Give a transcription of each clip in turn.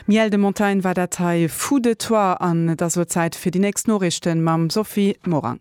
Miel de montagne war dat hei vu de toi an et ass lo Zäit fir déi nächst Noriichten mam Sophie Morang.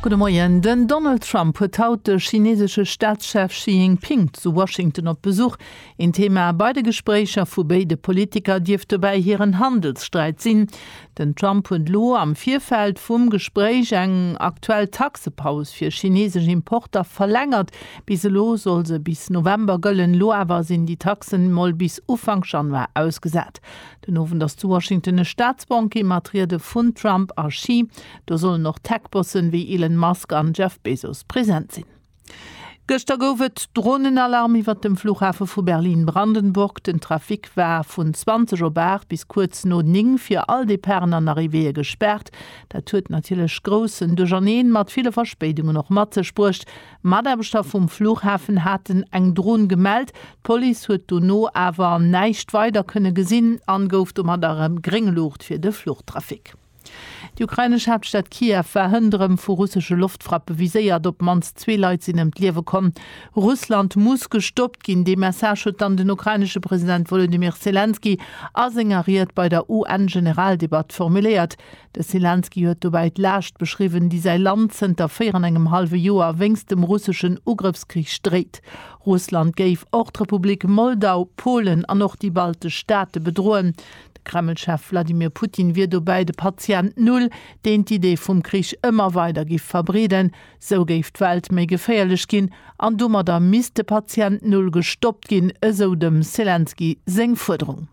Gudde Moien. Den Donald Trump huet haut de chineesesche Staatschef Xi Jinping zu Washington op Besuch. Een Thema bei de Gespréicher vu béide Politiker dierft dobäi hiren Handelssträit sinn. Den Trump huet elo am Virfeld vum Gespréich eng aktuell Taxepaus fir chinesesch Importer verlängert. Bis elo soll se bis November gëllen, elo awer sinn déi Taxen mol bis Ufank Januar ausgesat. Den Owend ass zu Washington e Staatsbanquet mat Riede vun Trump a Xi. Do sollen och Tech-Bossen ewéi Elon Musk an Jeff Bezos present sinn. Gëschter gouf et Dronenalarm iwwert dem Flughafe vu Berlin-Brandenburg. Den Trafic war vun 20 op 8 bis kuerz no 9 fir all Departen an Arrivéeë gespaart. Dat huet natierlech groussen Duercherneen mat ville Verspéidungen och mat sech bruecht. Mataarbechter vum Flughafen haten eng Dron gemellt. D'Police huet dono awer näischt weider kënne gesinn an gouf domat erëm Gréng Luucht fir de Fluchtrafic. Déi ukrainesch Haaptstad Kiew war hënt erëm vu russesche Loftfrappe viséiert. Op d'mannst zwee Leit sinn ëm d'Liewe komm. Russland muss gestoppt ginn, dee Message huet dann den ukrainesche President Wolodymyr Selenskyj a senger Ried bei der UN-Generaldebatt formuléiert. De Selenskyj huet dobäi d'Laascht beschriwwen, déi säi Land zënter véier an engem hallwe Joer wéinst dem russeschen Ugrëffskrich dréit. Russland géif och d'Republik Moldau, Polen an och déi baltesch Staate bedroen. De Kreml-Chef Wladimir Putin wier dobäi de Patient Null, deen d'Idee vum Krich ëmmer weider giff verbreeden. Sou géif d'Welt méi geféierlech ginn an domadder misst de Patient Null gestoppt ginn, esou dem Selenskyj seng Fuerderung.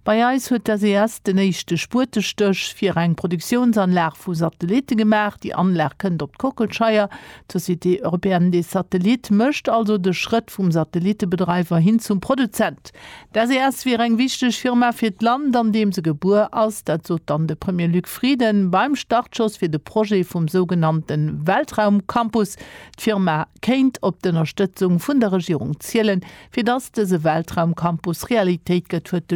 Bei eis huet d'SES den éischte Spuetestéch fir eng Produktiounsanlag vu Satellitte gemaach. Déi Anlag kënnt op d'Kockelscheier. D'Société Européenne des Satellites mécht also de Schrëtt vum Satellittebedreiwer hin zum Produzent. D'SES wier eng wichteg Firma fir d'Land, an deem se gebuer ass. Dat sot dann de Premier Luc Frieden beim Startschoss fir de Projet vum sougenannte Weltraumcampus. D'Firma kéint op d'Ënnerstëtzung vun der Regierung zielen, fir dass dëse Weltraumcampus Realitéit gëtt, huet